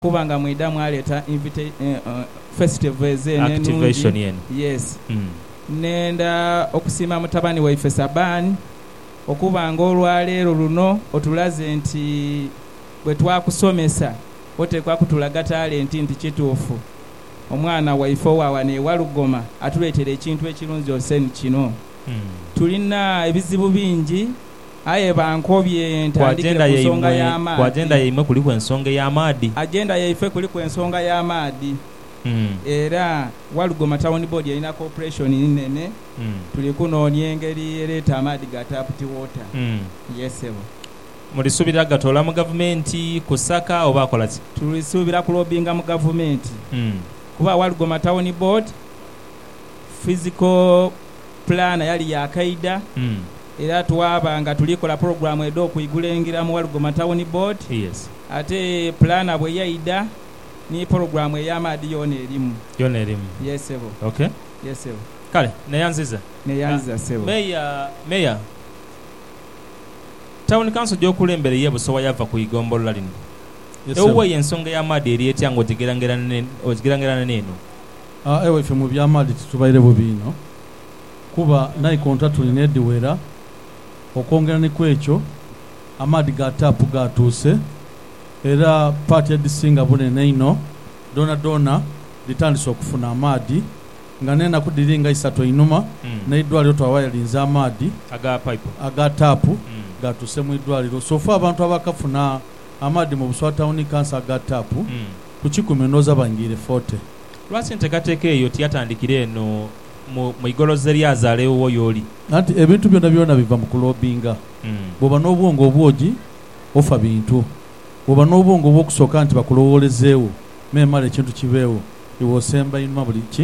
Kuba nga mwidha mwaleeta invita, festival ezo eno enungi. Activation eno. Yes. Nnhenda okusiima mutabani waife Saban okuba nga olwaleero luno otulaze nti bwe twakusomesa oteekwa kutulaga talenti nti kituufu omwana waife owa wano e Walugoma atuleetere ekintu ekirunzi ose ni kino. Tulina ebizibu bingi. Aye bankobye ntandikire ku nsonga y'amaadhi. Ku agenda yaimwe kuliku ensonga ey'amaadhi? Agenda yaife kuliku ensonga y'amaadhi era Walugoma Town Board erina kopuleishoni nene. Tuli kunoonia engeri ereeta amaadhi ga taaputi woota. Yee ssebo. Mulisuubira gatoola mu gavumenti kusaka oba akola ki? Tulisuubira kulobinga mu gavumenti kuba Walugoma Town Board fiziko. Pulaana yali ya kaidha era twaba nga tuli kola pulogulaamu edh'okwigula engira mu Walugoma Tawuni Boodi. Ate pulaana bwe yaidha ni pulogulaamu ey'amaadhi yoona erimu. Yoona erimu. Yee, ssebo. Ok. Yee, ssebo. Kale, neeyanziza. Neeyanziza, ssebo. Meeya, Meeya, Tawuni Kanso gy'okulembera ey'e Busowa yava ku igombolola lino. Ewuwo eyo ensonga ey'amaadhi eri etya nga ogigeraagerania n'eno? Aye ife mu by'amaadhi titubaire bubi inho, kuba naikonta tulina edhiwera. Okwongera ni ku ekyo, amaadhi ga taapu gaatuuse, era paati edhisinga bunene inho dhoonadhoona dhitandise okufuna amaadhi. Nga n'enaku dhiri nga isatu einhuma, n'eidwaliro twabaire linze amaadhi aga taapu gaatuuse mu idwaliro. So far abantu abaakafuna amaadhi mu Buswatawuni Kanso aga taapu ku kikumi ndhowooza baingiire forty. Lwaki enteekateeka eyo tiyatandikira eno mu, mu igoloza eryazaala ewuwo y'oli? Anti ebintu byonabyona biva mu kuloobinga. Bw'oba n'obwongo obwogi, ofa bintu. Bw'oba n'obwongo obw'okusooka nti bakulowoolezeegho, memale ekintu kibeegho, iwe osemba einhuma buli ki,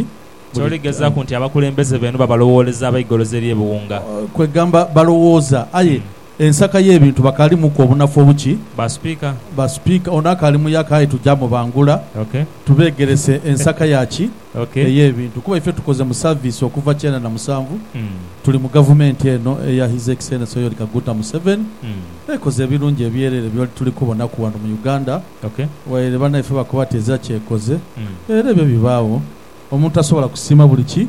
buli. Toligezaaku nti abakulembeze beenu babalowooleza abaigoloza ery'ebiwunga. Kwegamba, balowooza, aye Ensaka y'ebintu bakalimuku obunafu obuki? Ba Speaker. Ba Speaker, ono akali muyaka aye tuja mubangula Ok. tubegerese ensaka ya ki? Ok. Ey'ebintu kuba ife tukoze mu service okuva kyenda na musanvu Mm. tuli mu gavumenti eno eya His Excellency Yoweri Kaguta Museveni Mm. ekoze ebirungi ebyerere byoli tuli kubonaku wano mu Uganda Ok. waire banaife bakoba tezira kyekoze Mm. era ebyo bibaagho omuntu tasobola kusiima buli ki?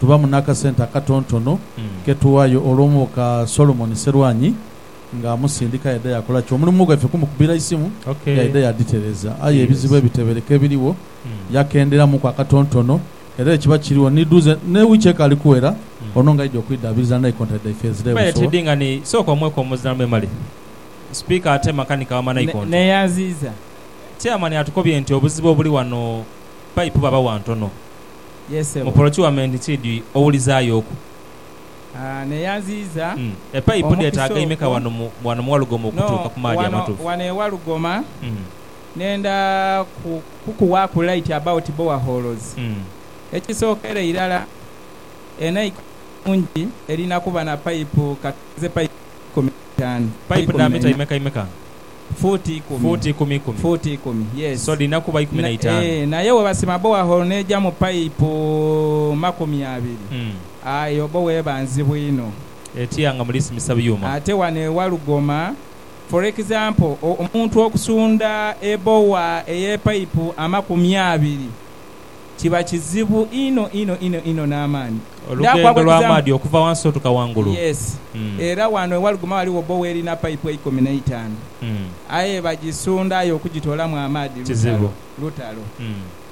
Tubamu n'akasente akatontono ke tuwayo olwo muka Solomon Sserwanyi nga amusindika yaidha yakola ki? Omulimu gwaife kumukubira isimu yaidha yadhitereza aye ebizibu ebitebereka ebirigho yakenderamuku akatontono era ekiba kirigho ni dhuze ne wiiki ekaali kuwera ono nga aidha okwidhaabiriza ni naikonta dhaife ezira e Busoga. Neyanziiza. Chairman atukobye nti obuzibu obuli wano payipu baba wa ntono. Ye ssebo. Mu porocuwamenti ki dhi owulizaayo oku? A. Neyanziiza Mm. Epaipu omukisa dheetaaga imeka okwo. wano mu wano mu Walugoma No, okutuuka ku maadhi wano, amatuufu? wano e Walugoma Mm. nenda ku, kukuwaaku light about boreholes. Mm. Ekisookera irala, enaiko nungi erina kuba na paipu, ka tuteeze paipu ikumi na itaanu, Paipu dha eikumi mita n'eibiri. imeka imeka? Fuuti ikumi. Fuuti ikumi ikumi. Fuuti ikumi, yes. So dhirina kuba ikumi na itaanu. Eeh, naye webasima borehole n'eja mu payipu makumi abiri, aye obo weba nzibu inho. Etya nga mulisimisa byuma? Ate wano e Walugoma, for example, omuntu okusunda ebowa ey'epayipu amakumi abiri. kiba kizibu inho inho inho inho n'amaani. Olugendo lw'amaadhi okuva wansi otuka wangulu. Yes. Era wano ewaliguma waliwo bowa erina paipu eikumi n'eitaanu. Aye bagisunda aye okugitoolamu amaadhi lutalo, lutalo.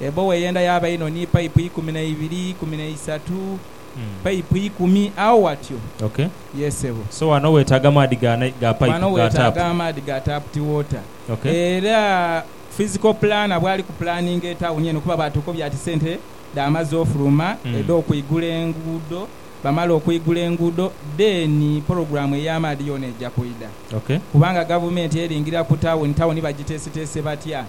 Ebowa eyenda yaaba inho ni paipu ikumi n'eibiri, ikumi n'eisatu, paipu ikumi agho watyo. Okay. Yes sebo. So wano wetaaga maadhi ga paipu, ga taapu. Wano wetaaga amaadhi ga taapu ti water. Okay. Era. Physical planner bwali ku pulaninga etawuni eno kuba baatuuka obya ti sente dhaamaze ofuluma, edh'okwigula enguudo. Bamala okwigula enguudo dheeni pologulaamu ey'amaadhi yoona eja kwidha. Kubanga Gavumenti eringira ku tawuni, tawuni bagiteeseteese batya?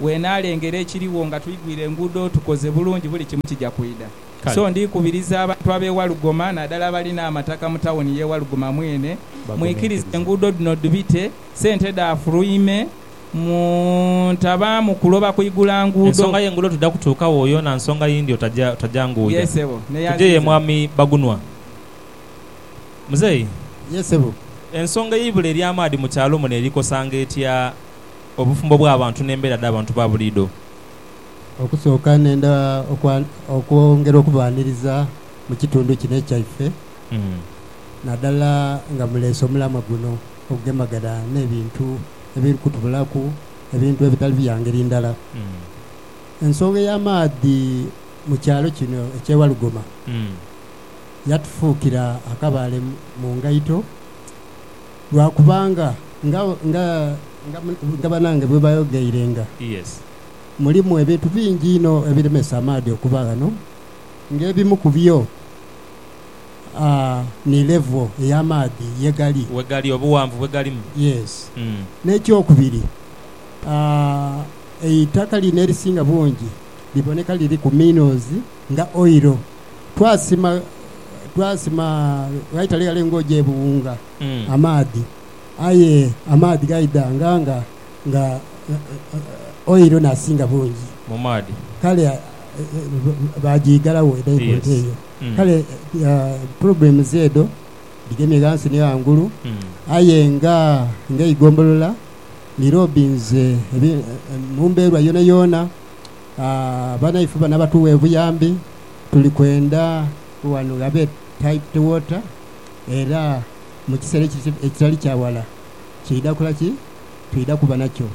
Bw'enaalengera ekiriwo nga twigwire enguudo, tukoze bulungi, buli kimu kija kwidha. So ndi kubiriza abantu ab'e Walugoma naadala abalina amataka mu tawuni y'e Walugoma mwene, mwikirize enguudo dhino dhibite, sente dhaafuluime, Mu ntabaamu kuloba kuigula nguudo. Ensonga y'enguudo twidha kutuukagho yoona nsonga yindi otajanguuja. Yee sebo. Tugye ye mwami Bagunwa. Muzeeyi. Yee sebo. Ensonga ey'eibula ery'amaadhi mu kyalo muno eri kosanga etya obufumbo bw'abantu n'embeera dh'abantu ba buliidho? Okusooka nenda okwongera okubaaniriza mu kitundu kino ekyaife nadala nga muleese omulamwa guno ogugemagana n'ebintu. ebiri kutubulaku ebintu ebitali bya ngeri ndala. Ensonga ey'amaadhi mu kyalo kino eky'e Walugoma yatufuukira akabaale mu ngaito lwa kubanga nga, nga, nga bannange bwe baayogeirenga, mulimu ebintu bingi inho ebiremesa amaadhi okuba ghano, ng'ebimu ku byo Aa, ni level ey'amaadhi ye gali. We gali, obughanvu bwe galimu. Yes. Mm. N'ekyokubiri, aa, eitaka lino erisinga bungi liboneka liriku minerals nga oil. Twasima, twasima ghaitale ghale ng'oja e Buwunga, Mm. amaadhi. Aye amaadhi gaidha nga, nga, nga oil n'asinga bungi. Mu maadhi. Kale, a, a, a, baagiigalagho e Yes. Naikonto eyo. Kale programs edho dhigemye ghansi ni ghangulu, aye nga eigombolola ni lobinze mu mbeerwa yoonayoona, banaife bano abatugha obuyambi tuli kwenda ghano ghabe piped water era mu kiseera ekitali kya wala kiidha kola ki? Twidha kuba nakyo.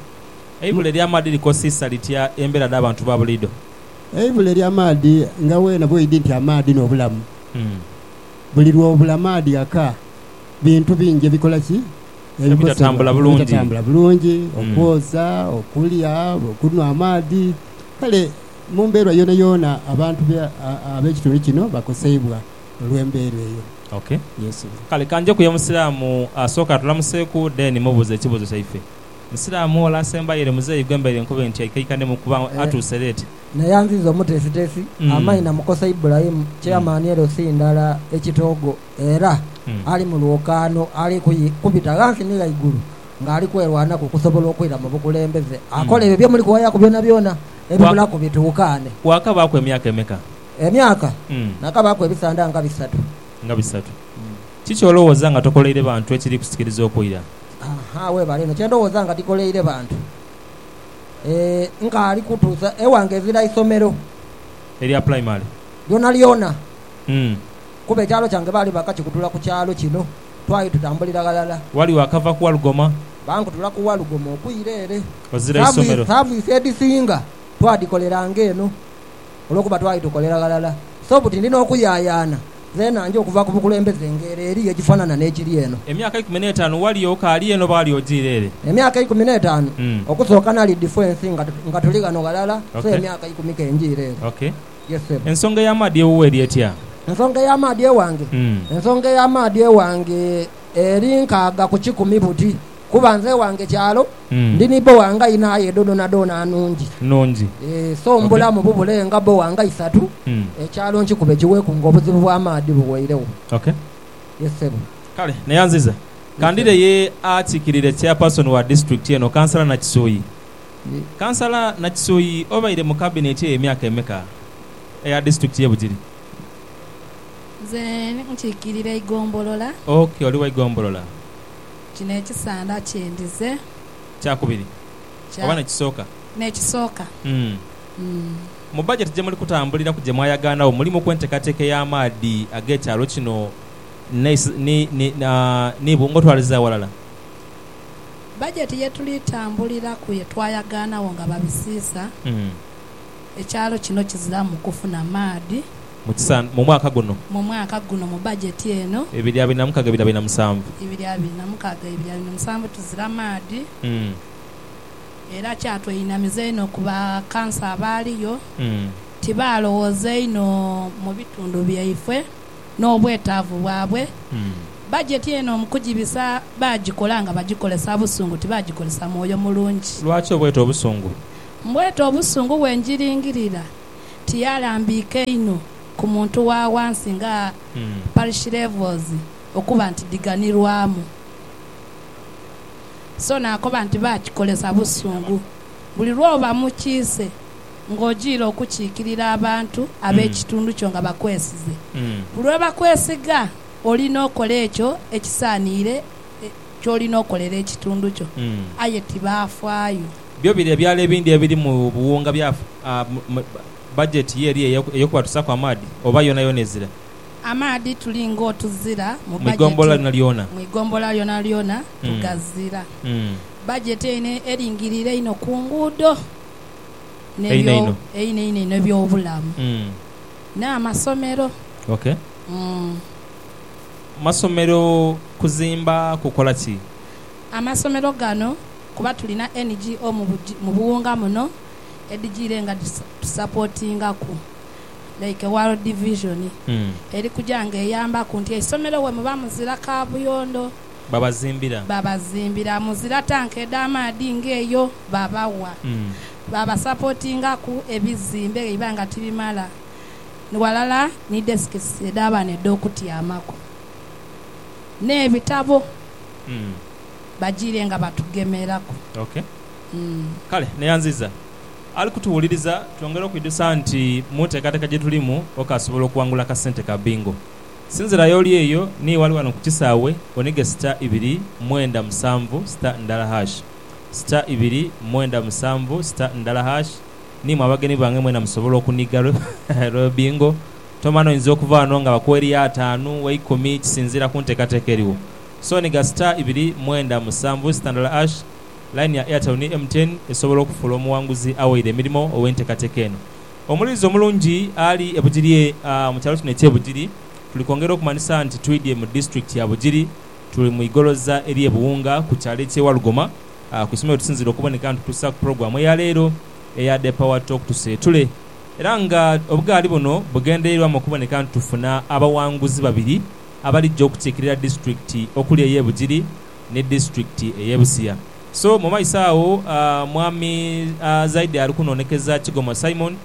Eibula ely'amaadhi likosisa litya embeera dh'abantu ba buliidho? Eivule ery'amaadhi nga weena bw'oidhi nti amaadhi n'obulamu. Buli lw'obula maadhi ghaka, bintu bingi ebikola ki? Ebitatambula bulungi. Ebitatambula bulungi, okwoza, okulya, okunhwa amaadhi. Kale mu mbeera yoonayoona abantu ab'ekitundu kino bakoseibwa olw'embeera eyo. Ok. Yes. Kale ka njeku ye Musiraamu asooke atulamuseeku then mubuuze ekibuuzo kyaife. Musiraamu wala asembayo ere muzeeyi gwe mbaire nkoba nti aikaikanemu kuba atuuse leeti. Naye anziza omuteesiteesi amaini namukosa Ibulayimu Chairman LC ndala e Kitoogo era ali mu lwokaano ali kubita ghansi ni ghaigulu ng'ali kwerwanaku okusobola okwira mu bukulembeze akole ebyo bye muli kuwayaku byonabyona ebibulaku bituukaane. Waakabaaku emyaka emeka? Emyaka? Nakabaaku ebisanda nga bisatu. Nga bisatu. Kiki olowooza nga tokoleire bantu ekiri kusikiriza okwira? Haa, weebale inho. Kye ndowooza nga tikoleire bantu, eeh, nkaali kutuusa ewange ezira isomero. Erya pulaimale? Lyonalyona. Umm. Kuba ekyalo kyange baali baakakikutula ku kyalo kino, twali tutambulira ghalala. Wali waakava ku Walugoma? Baankutula ku Walugoma okwira ere. Ozira isomero? Saavisi edhisinga twadhikoleranga eno. olwokuba twali tukolera ghalala. So buti ndi n'okuyaayaana zeenange okuva ku bukulembeze ng'ere eri ye gifanana n'ekiri eno. Emyaka eikumi n'etaanu wali okaali eno oba wali ojiire ere? Emyaka eikumi n'etaanu. Okusooka nali difwensi nga tuli ghano ghalala, so emyaka ikumi ke njiire ere. Ok. Yes, ssebo. Ensonga ey'amaadhi ewuwo eri etya? Ensonga ey'amaadhi ewange? Ensonga ey'amaadhi ewange eri nkaaga ku kikumi buti. Kuba nze wange kyalo, ndi ni bowa nga inha aye edho dhoonadhoona nnungi. So mbulamu bubule nga bowa nga isatu, ekyalo nkikube kiweeku nga obuzibu bw'amaadhi buweiregho. Ye ssebo. Kale neyanziza. Ka ndhire ye akiikirire Chairperson wa Disitulikiti eno, Kansala Nakisuyi. Kansala Nakisuyi, obaire mu Kabineti eyo emyaka emeka, eya Disitulikiti y'e Bugiri? Nze nkiikirira eigombolola. Ok, oli wa igombolola. Kino ekisanda kye ndize. Kya kubiri Kya. oba n'ekisooka? N'ekisooka. Umm. Umm. Mu bajeti gye muli kutambuliraku gye mwayagaanagho mulimu ku enteekateeka ey'amaadhi ag'ekyalo kino ni, ni, ni, ni bwo ng'otwaliza aghalala? Bajeti ye tuli tambuliraku ye twayagaanagho nga babisiisa. Umm. Ekyalo kino kiziramu kufuna maadhi. Mu mwaka guno. Mu mwaka guno mu bajeti eno. Ebiri abiri na mukaga ebiri abiri na musanvu. Ebiri abiri na mukaga ebiri abiri na musanvu tuzira maadhi era kyatweinamiza inho ku ba kansa abaaliyo nti baalowooza inho mu bitundu byaifwe n'obwetaavu bwabwe. Bajeti eno mu kugibisa baagikola nga bagikolesa busungu tibagikolesa mwoyo mulungi. Lwaki oboyeta obusungu? Mbwete obusungu bwe njiringirira tiyalambiika inho ku muntu wa ghansi nga parish levels okuba nti dhiganirwamu. So naakoba nti baakikolesa busungu. Buli lw'oba mu kiise ng'ojiire okukiikirira abantu ab'ekitundu kyo nga bakwesize, buli lwe bakwesiga oli n'okola ekyo ekisaaniire ky'oli n'okolera ekitundu kyo. Aye tibaafaayo. Byo biri ebyalo ebindi ebiri mu buwunga bya bajeti ye eri ey'okubatusaku amaadhi, oba yonayona ezira? Amaadhi tuli ng'otuzira mu bajeti mu igombolola lyonalyona tugazira. Bajeti eino eringirire einho ku nguudo einho eby'obulamu n'amasomero. Ok. Masomero kuzimba kukola ki? Amasomero gano. kuba tulina NGO mu buwunga muno edhijiire nga dhitusapotingaku like World Vision eri kuja nga eyambaku nti eisomero wemuba muzira kabuyondo babazimbira, muzira tanka edh'amaadhi nga eyo babawa, babasapotingaku ebizimbe bweiba nga tibimala ghalala ni desks edh'abaana edh'okutyamaku n'ebitabo. bajiire nga batugemeraku. Ok. Mm. Kale, neyanziza ali kutuwuliriza. Twongere okwidhusa nti mu nteekateeka gye tulimu, okaasobola okuwangula akasente ka Bingo. Sinzirayo oli eyo ni wali wano ku kisaawe, onige sita ibiri mwenda musanvu sita ndala hash, sita ibiri mwenda musanvu sita ndala hash, ni mwe abagenyi bange mwena musobola okuniga lwe, lwe Bingo. Tomanya, oinza okuva wano nga bakuwa eriyo ataanu, eikumi, kisinziira ku nteekateeka eriwo. Sony ga star ibiri mwenda musanvu sitandala ash Line ya Airtel ni MTN esobola okufuula omuwanguzi awaire emirimo ow'entekateka eno. Omulilizi omulungi ali e Bugiri Mu kyalo kino ekye Bugiri tuli kwongera okumanhisa nti twidhye mu district ya Bugiri. Tuli mu igoloza erye Buwunga ku kyalo ekye Walugoma ku isomero wetusinzira okuboneka nitutusaku program eya leero eya The Power Talk Tuseetule era nga obugaali buno bugendereirwamu okuboneka nti tufuna abawanguzi babiri abalijja okukiikirira disiturikiti okuli ey'e Bugiri ni disiturikiti ey'e Busia. So mu maiso agho Mwami Zaidi ali kunoonekeza Kigoma Simon,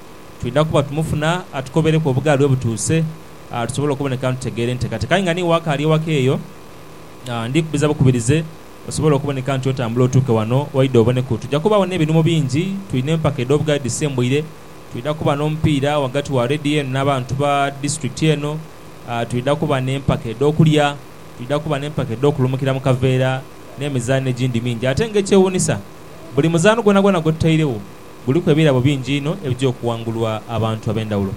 twidha kuba tumufuna atukobereku obugaali we butuuse tusobole okuboneka nitutegeera enteekateeka. Aye nga n'iwe akaali ewaka eyo, ndi kukubiriza bukubirize osobole okuboneka nti otambula otuuke wano waidha oboneku. Twidha kubagho n'ebinhumo bingi, twina empaka edh'obugaali edhisembuire, twidha kuba n'omupiira ghagati wa leediyo eno n'abantu ba disiturikiti eno, Twidha kuba n'empaka edh'okulya, twidha kuba n'empaka edh'okulumukira mu kaveera, n'emizaano egindi mingi. Ate ng'ekyewuunisa, buli muzaano gwonagwona gwe tutairegho guliku ebirabo bingi inho ebija okuwangulwa abantu ab'endhawulo.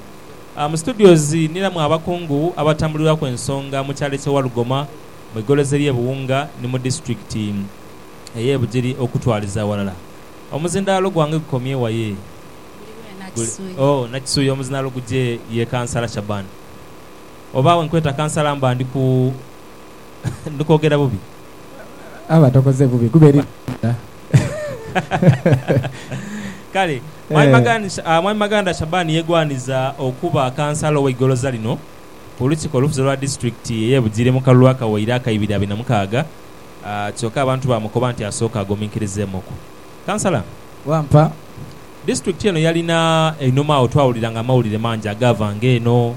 Mu studios niramu abakungu abatambulirwaku ensonga mu kyalo eky'e Walugoma, mu igolozi ery'e Buwunga ni mu disiturikiti ey'e Bugiri okutwaliza aghalala. Omuzindaalo gwange gukomye wa ye? Oh, Nakisuyi omuzina Luguje ye Kansala Shaban. Oba wenkweta Kansala mba ndi ku, ndi kwogera bubi? Aba tokoze bubi kuba elina eidha. Kale, Mwami Maganda, ah, Mwami Maganda Shaban yegwaniza okuba Kansala owe Igoloza lino ku Lukiiko olufuzi olwa Disiturikiti eye Bugiri mu kalulu akaweire aka ibiri abiri na mukaaga, ah, kyoka abantu bamukoba nti asooke aguminkirizeemuku. Kansala, wampa disitulikiti eno yalina einhuma agho twawuliranga amawulire mangi agaavanga eno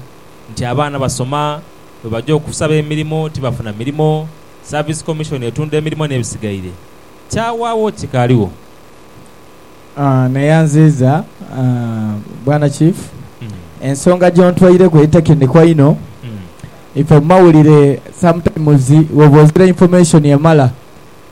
nti abaana basoma, bwe baja okusaba emirimo tibafuna mirimo, Service Commission etunda emirimo n'ebisigaire. Kyawaagho kikaaligho? Neyanziiza Bwana Chief, ensonga gyontweireku eri tekiniko inho. Ife mu mawulire sometimes bwoba ozira information emala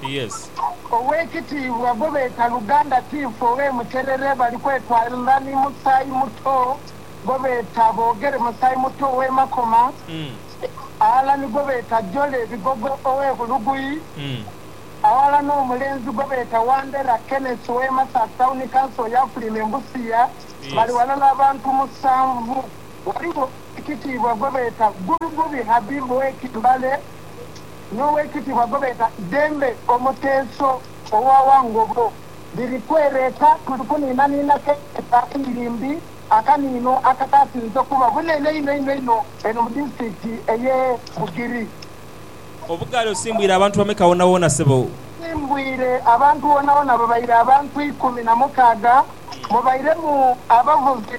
Yes. Owekitiibwa gwe beeta Luganda Tiifu owe Muterere bali kwetwalira ni Musaayi Muto gwe beeta Bogere Musaayi Muto owe Makoma aghala ni gwe beeta Jole Bigogo owe Bulugui aghala no mulenzi gwe beeta Wandera Kenneth owe Masasi Town Council ya Fulime Mbusiya bali ghalala abantu musanvu. Ghaligho Owekitiibwa gwe beeta Ggubi Ggubi Habib owe Kimbale. n'owekitibwa gwebeeta Dembe Omuteeso owa Wangogo biri kwereeta kuli kuniinaniina keeta Iyirimbi, akaniino akakaasinze okuba obunene einho einho einho eno mu disitulikiti eye Bugiri. Obugaali osimbwire abantu bameka wonawoona sebo? Nsimbwire abantu wonawoona babaire abantu ikumi na mukaaga mubairemu abavuzi.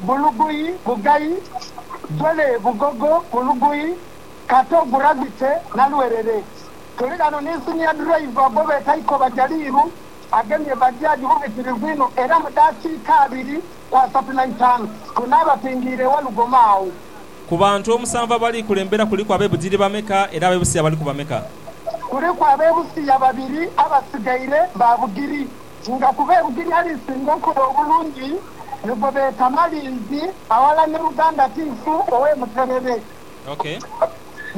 Buluguyi, Bugayi, Jole, Bugogo, Buluguyi, Kato, Gravity, na Lwerere. Tuli ghano ni Senior Driver gwebeeta Ikoba Jaliiru agemye Bajaj bubitirivu inho era mu dakiika abiri ku asatu na itaanu tunaaba twingiire ewa Lugoma agho. Ku bantu omusanvu abali kulembera kuliku abe Bugiri bameka era abe Busia baliku bameka? Kuliku abe Busia babiri abasigaire ba Bugiri. Nga kuba ebugiri alisinga okola obulungi ni gwe beeta Malinzi aghala ni Luganda Tiifu ow'e Muterere.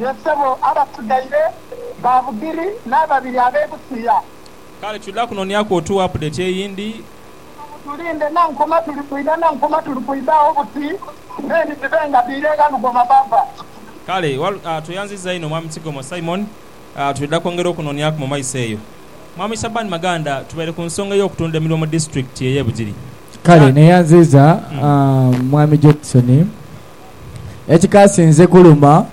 Ye ssebo abasigaire ba Bugiri n'ababiri ab'e Busia. Kale twidha kunonyaku otuwe apudeti eyindi. Awo mutulinde Nankoma tuli kwidha Nankoma tuli kwidha agho buti then dhibe nga dhiire gha lugoma bava. Kale, tweyanziza inho Mwami Kigomo Simon. Twidha kwongera okunonyaku mu maiso eyo. Mwami Shaban Maganda, tubaire ku nsonga ey'okutunda emirimo mu disiturikiti ey'e Bugiri. Kale neyanziiza Mwami Jackson ekikaasinze kuluma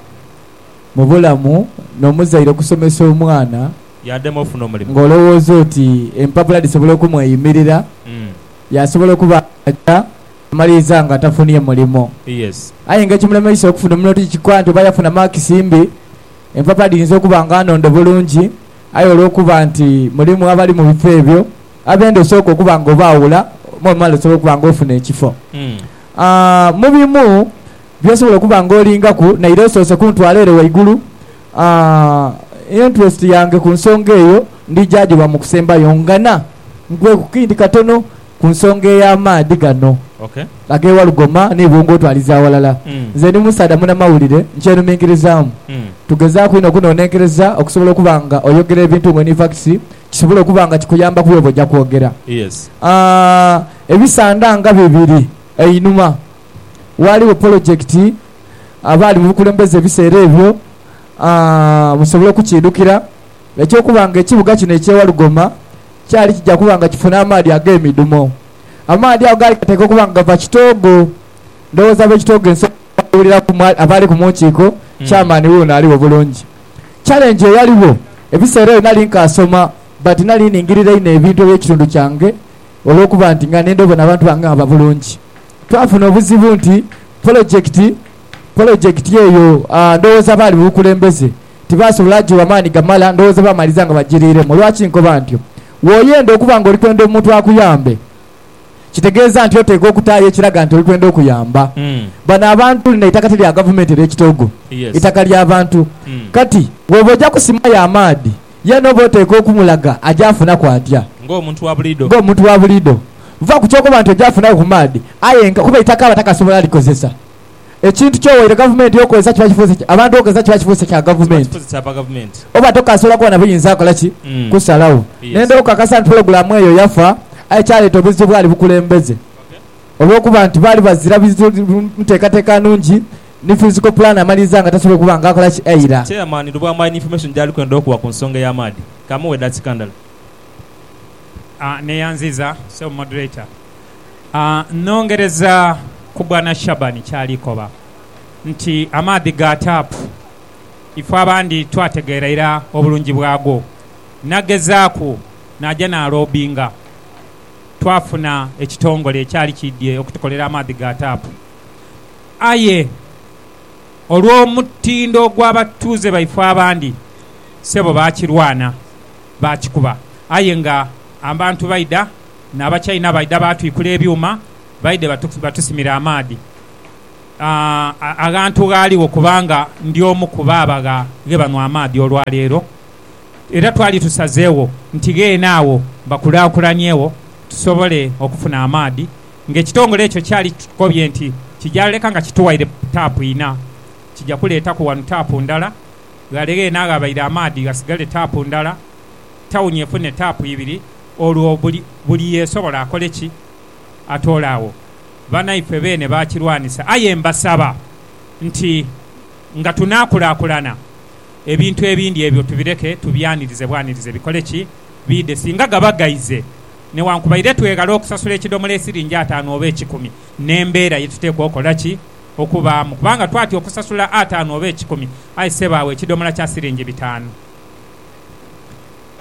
mu bulamu n'omuzaire okusomesa omwana Yaadema ofuna omulimu. ng'olowooza oti empapula dhisobola okumweyimirira, yaasobola okuba nga amaliriza nga tafunye mulimo. Yes. Aye nga ekimulemeisa okufuna omulimu tikikoa nti oba yafuna maakisi mbi. Empapa dhiyinza okuba nga nhondo bulungi, aye olw'okuba nti mulimu abali mu bifo ebyo abenda osooka okuba nga obaawula mw'omala osobola okuba nga ofuna ekifo. Mu bimu by'osobola okuba nga olingaku naire osoose kuntwala ere ghaigulu, interest yange ku nsonga eyo ndija ghiwa mu kusembayo. Nghana nkughe ku kindi katono. Ku nsonga ey'amaadhi gano ag'e Walugoma ni Bungwe otwaliza aghalala, nze ndi musaadha munamawulire nkyenuminkirizaamu. Tugezaaku inho okunonenkereza okusobola okuba nga oyogera ebintu ng'oli ni fakisi kisobole okuba nga kikuyambaku bw'oba oja kwogera. Ebisanda nga bibiri einhuma waaliwo polojekiti abaali mu bukulembeze ebiseera ebyo musobola okukiidhukira. Eky'okuba nga ekibuga kino eky'e Walugoma kyali kija kuba nga kifuna amaadhi ag'emidhumo, amaadhi ago gaali gateekwa okuba nga gava kitoogo. Ndowooza ab'ekitoogo ensi ebaawuliraku abaali ku mu nkiiko. Chairman wuuno aligho bulungi. Challenge eyaligho, ebiseera ebyo nali nkaasoma but nali ningirira inho ebintu eby'ekitundu kyange olw'okuba nti nga nenda obona abantu bange nga baba bulungi. Twafuna obuzibu nti polojekiti polojekiti eyo ndowooza abaali mu bukulembeze, Tibaasobola kugigha maani gamala, ndowooza baamaliriza nga bagiriiremu. Lwaki nkoba ntyo? W'oyenda okuba ng'oli kwenda omuntu akuyambe, kitegeeza nti oteekwa okutaayo ekiraga nti oli kwenda okuyamba. Bano abantu, lino eitaka ti lya gavumenti, elyo ekitoogo, itaka lya bantu. Kati, bw'oba oja kusimayo amaadhi, yeena oba oteekwa okumulaga aja afunaku atya? Ng'omuntu wa buliidho. Ng'omuntu wa buliidho. Va ku ky'okuba nti oja afunaku ku maadhi, aye nga, kuba eitaka aba takasobola likozesa. Ekintu kyowaire gavumenti okweza kiba kifuuse ki? Abantu okweza kiba kifuuse kya gavumenti. Oba tokasobola kuba na buyinza kukola ki? Kusalawo. Nenda okukakasa nti pulogulaamu eyo yafa, aye kyaleeta obuzibu bwali bukulembeze. Olw'okuba nti baali bazira nteekateeka nungi, ni fiziko pulaani amaliriza nga tasobola kuba nga akola ki? Aira. Chairman Lubwama aine information gyali kwenda okuwa ku nsonga ey'amaadhi. Kamuwe edakika ndala. Neyanziza Ssebo Moderator. Nnhongereza ku Bwana Shaban ky'ali koba nti amaadhi ga taapu ife abandi twategeera ira obulungi bwago. Nagezaaku naja naloobinga, twafuna ekitongole ekyali kiidhie okutukolera amaadhi ga taapu. Aye olw'omutindo gw'abatuuze baife abandi, ssebo baakirwana, baakikuba aye nga abantu baidha. n'Abachaina baidha baatwikula ebyuma baidhe batusimira amaadhi aghantu ghaaligho kubanga ndi omu ku baabagha ghe banwa amaadhi olwaleero. Era twali tusazeegho nti gheene agho bakulaakulaniegho tusobole okufuna amaadhi. Ng'ekitongole ekyo kyali kitukobye nti kija leka nga kituwaire taapu ina, kija kuleetaku wanu taapu ndala, ghale gheene aghabaire amaadhi ghasigale taapu ndala, tawuni efune taapu ibiri. Olwo buli buli yeesobola akole ki? Atoole agho. Banaife beene baakirwanisa. Aye mbasaba nti nga tunaakulaakulana, ebintu ebindi ebyo tubireke tubyanirize bwanirize bikole ki? Biidhe. Singa gaba gaize, newankubadde tweghala okusasula ekidomola esiringi ataanu oba ekikumi, n'embeera ye tuteekwa okola ki? Okubaamu. Kubanga twatya okusasula ataanu oba ekikumi, aye ssebo agho ekidomola kya siringi bitaanu.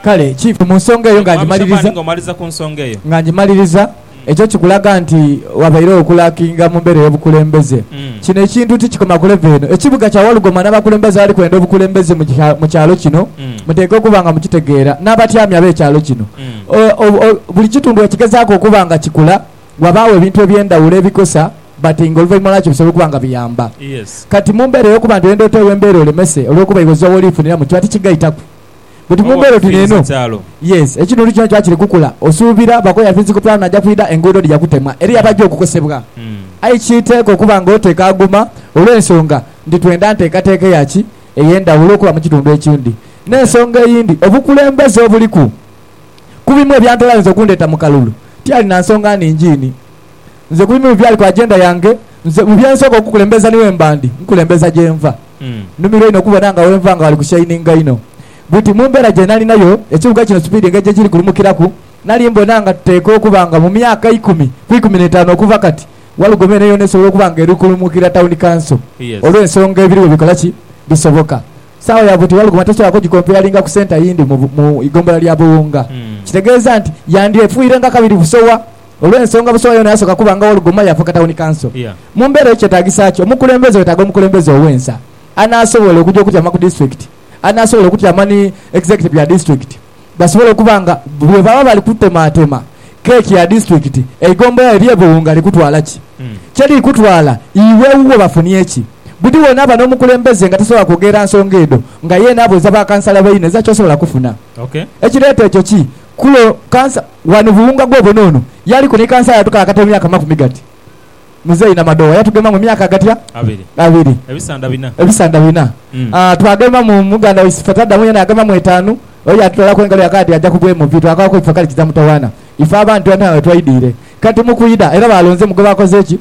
Kale kiife mu nsonga eyo nga Mwami Shafani, ngimaliriza. ng'omaliza ku nsonga eyo. Nga ngimaliriza, ekyo kikulaga nti wabairegho okulakinga mu mbeera ey'obukulembeze. Mm. Kino ekintu tikikoma ku levo eno. Ekibuga kya Walugoma n'abakulembeze abali kwenda obukulembeze mu kya, mu kyalo kino, Mm. muteekwa okuba nga mukitegeera, n'abatyami ab'ekyalo kino. Mm. O, o, o, buli kitundu bwe kigezaaku okuba nga kikula, wabaagho ebintu eby'endhawulo ebikosa, but ng'oluvainma lwakyo bisobola okuba nga biyamba. Yes. Kati mu mbeera ey'okuba nti oyenda oteewo embeera olemese olw'okuba iwe ozira w'oli funira mu kiba tikigaitaku. But mu mbeera oti neeno, yes, ekitundu kino kiba kiri kukula. Osuubira bakoya physical plan aja kwidha, enguudo dhija kutemwa, eriyo abaja okukosebwa. Aye kiteekwa okuba nga oteeka aguma olw'ensonga nti twenda nteekateeka eya ki? Ey'endhawulo okuba mu kitundu ekindi. N'ensonga eyindi, obukulembeze obuliku ku bimu ebya ntola ayinza okundheeta mu kalulu, tiyali na nsonga nhingi inhi. Nze ku bimu byali ku agenda yange. Nze mu bye nsooka okukulembeza ni wemba ndi nkulembeza gye nva. Nnumirwa inho okubona nga wenva nga ghali ku shaininga inho. Bwiti mu mbeera gye nali nayo, ekibuga kino sipiidi engeri gye kiri kulumukiraku, nali mbona nga tuteekwa okuba nga mu myaka ikumi ku ikumi n'etaanu okuva kati, Walugome eno yoona esobola okuba nga eri kulumukira Tawuni Kanso olw'ensonga ebiriwo bikola ki? Bisoboka. Saawa ya bwiti Walugoma tasobola kugikomperalinga ku senta yindi mu mu ighombolola lya Buwunga. Kitegeeza nti yandyefuirenga kabiri busowa Olw'ensonga busowa yoona yasooka kuba nga Wall Gomaya afuuka tawuni kanso. Mu mbeera eyo kyetaagisa ki? Omukulembeze weetaaga omukulembeze ow'ensa anaasobola okuja okutyama ku disitulikiti, anaasobola okutyama ni executive ya disitulikiti basobole okuba nga bwe baba bali kutemaatema keeki ya disitulikiti, eigombola lye ly'ebiwunga likutwala ki? Kye likutwala iwe wuwo bafunye ki? Buli w'onaaba n'omukulembeze nga tasobola kwogerera nsonga edho nga yeena abuuza bakansala baine, zaki osobola kufuna ekireeta ekyo ki? Kulo kansa ghano Buwunga gwobona ono yaliku ni kansa yatukaakata emyaka makumi gati. Muzeeyi Namadoowa yatugema mu myaka gatya? Abiri. Abiri. Ebisanda bina. Ebisanda bina. Aah twagemamu muganda waife Fatadamu yena yagemamu etaanu. Oyo yatutoolaku engalo yakaya ati aja kubwa emuvi. Twakaaku ekifa kale kiza mutawaana. Ife abantu ghano agho wetwaidiire. Kati mu kwidha era baalonzemu gwe baakoze ki?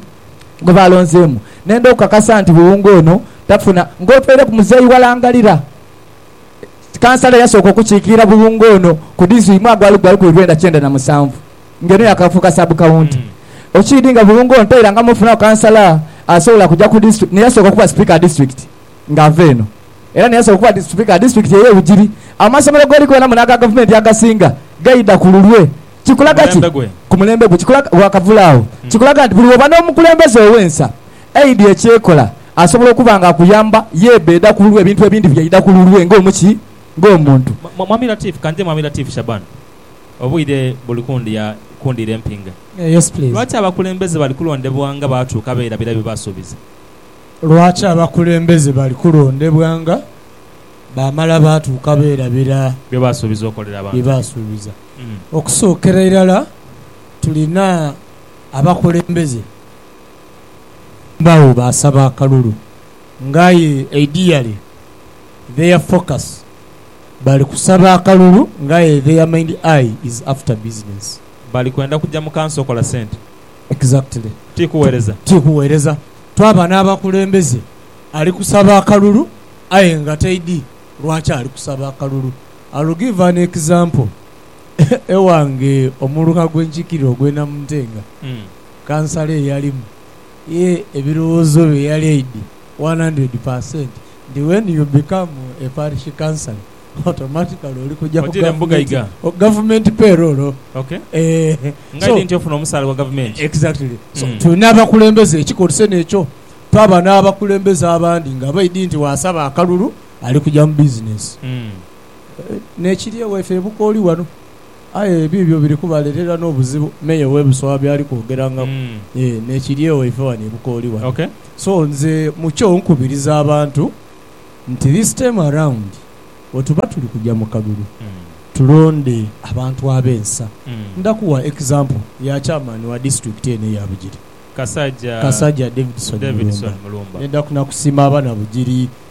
Gwe baalonzeemu. Nenda okukakasa nti Buwunga ono tafuna. Ng'otweireku muzeeyi Walangalira. Kansala eyasooka okukiikirira Buwunga ono ku dizu imwe agwali gwa lukumi lwenda kyenda na musanvu ng'eno yaakafuuka Sub Kawunti. Okiidi nga Buwunga ono tairangamu ofunagho kansala asobola kuja ku disitri n'eyasooka okuba Sipiika wa Disitulikiti ng'ava eno era n'eyasooka okuba Sipiika wa Disitulikiti ey'e Bugiri. Amasomero g'oli goona muno aga Gavumenti agasinga gaidha ku lulwe. Kikulaga ki? Ku mulembe gwe. Kikulaga, Wakavule agho. Kikulaga nti buli w'oba n'omukulembeze ow'ensa, Aidha ekyekola, asobola okuba nga akuyamba yebeeda kululwe ebintu ebindi byaidha kululwe nga omu ki? Nga omuntu. Mwami Latif, Ka nje Mwami Latif Shaban. Obwire buli kundhia, kundhiira empinga. Yes please. Lwaki abakulembeze bali kulondebwa nga baatuuka beerabira bye baasuubiza? Lwaki abakulembeze bali kulondebwa nga baamala baatuuka beerabira. Bye baasuubiza okolera abantu? Bye baasuubiza. Okusookera irala tulina abakulembeze Bagho baasaba akalulu nga aye ideally their focus bali kusaba akalulu nga aye their mind eye is after business. Bali kwenda kugya mu kanso kola sente. Exactly. Ti kuwereza. Ti kuwereza. Twaba n'abakulembeze ali kusaba akalulu aye nga taidi lwaki ali kusaba akalulu. I'll give an example. Ewange omuluka gwe nkikirira ogw'e Namuntenga. kansala ye yalimu, ye ebirowoozo bye yali aidhi one hundred per cent nti when you become a parish councillor automatically oli kuja ku Otiira mu buga gavumenti, iga. o gavumenti payroll o Ok. eeh Nga so aidhi nti ofuna omusaala gwa gavumenti. Exactly. So Mm. tulina abakulembeze ekikolise nekyo twaba n'abakulembeze abandi nga baidhi nti waasaba akalulu ali kuja mu bizinensi. Mm. Nekiri ewaife e Bukooli wano. Aye ebiibyo biri kubaleetera n'obuzibu Meeya ow'e Busoga by'ali kwogerangaku. Yee, n'ekiryegho ife wano e Bukooli wano. So nze mu kyo nkubiriza abantu nti this time around bwetuba tuli kuja mu kalulu tulonde abantu ab'ensa. Nda kuwa example ya chairman wa district eno eya Bugiri, Kasaja Davidson Mulumba. Nenda nakusiima abana Bugiri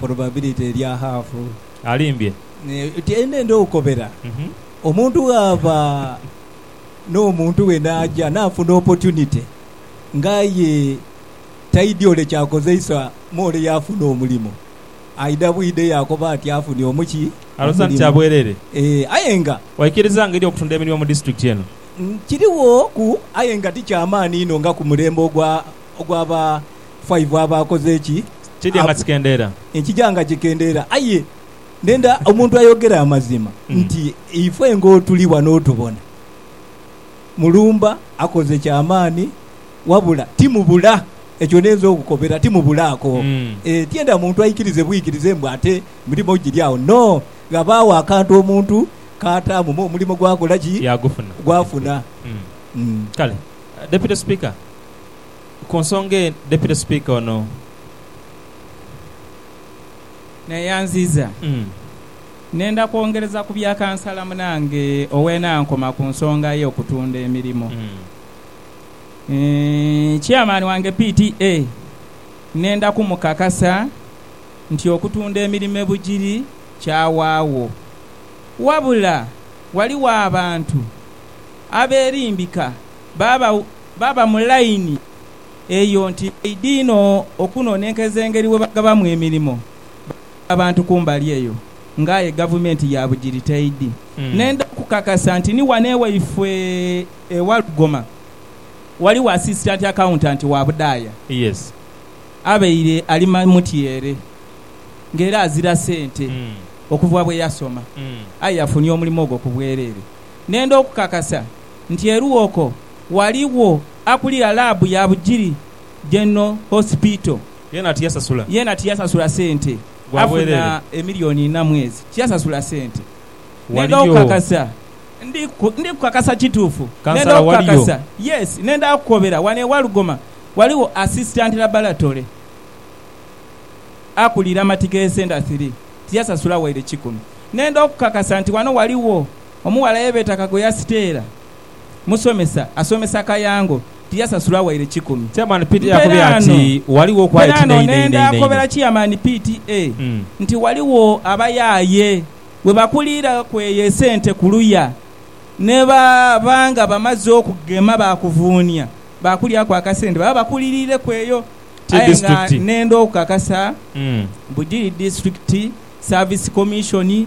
Probability erya half. Alimbye. Tiende ndi okukobera. Omuntu bwaba n'omuntu we n'aja n'afuna opportunity nga aye taidhi ole ky'akozeisa mu ole y'afuna omulimo, aidha bwidha yaakoba ati afunye omu ki? Alowooza nti kya bwereere. Ee, aye nga. Waikiriza nga ery'okutunda emirimu mu disiturikiti eno. Kirighoku aye nga ti kya maani inho nga ku mulembe ogwa. Ogwa ba five aba akoze ki? Kidya nga kikendeera. Nkija nga kikendeera. Aye ndenda omuntu ayogere amazima nti ife ng'otuli wano otubona, Mulumba akoze kya maani wabula timubula. Ekyo ninza okukobera, timubulaako. Ee, tienda muntu aikirize bwikirize mbu ate mirimo giri agho. No! Ghabaagho akantu omuntu k'ataamu me omulimo gwakola ki? Gwafuna. Kale, Deputy Speaker, ku nsonga eno, Deputy Speaker ono. Neyanziza nenda kwongereza ku bya Kansala munange ow'enankoma ku nsonga ye okutunda emirimo. Chairman wange PTA nenda ku mukakasa nti okutunda emirimo e Bugiri kyawaagho. Wabula ghaligho abantu aberimbika baba Baba mu laini eyo nti baidha inho okunonenkeza engeri bwe bagabamu emirimo. Balinga abantu kumbali eyo nga aye Gavumenti ya bugiritaidhi. Nenda okukakasa nti ni wano ewaifwe e Walugoma waliwo Asisitanti Akawuntanti wa budaaya abaire ali mutyeere ng'era azira sente okuva bwe yasoma aye yafunye omulimo ogwo ku bwereere. Nenda okukakasa nti eruwoko waliwo akulira laabu ya Bugiri General Hospital yeena tiyasasula sente, afuna emiliyoni inha mwezi tiyasasula sente. Nenda okukakasa, ndi kukakasa kituufu, nenda okukakasa, yes, nenda kukobera wano e Walugoma waliwo Assistant Laboratory akulira Matighe Center Three tiyasasula waire kikumi. Nenda okukakasa nti wano waliwo Omughala ye beeta Kagoya Siteera, musomesa, asomesa Kayango, tiyasasula waire kikumi. Chairman Pte yakubye ati ghaligho okwaye Mperaano kinho inho inho nenda inho. kobera Chairman Pte nti ghaligho abayaaye we bakuliira ku eyo esente ku luya ne ba ba nga bamaze okugema baakuvuunia baakulyaku akasente baba bakuliriireku eyo Ti aye nga district. nenda okukakasa mbu giri District Service Commission.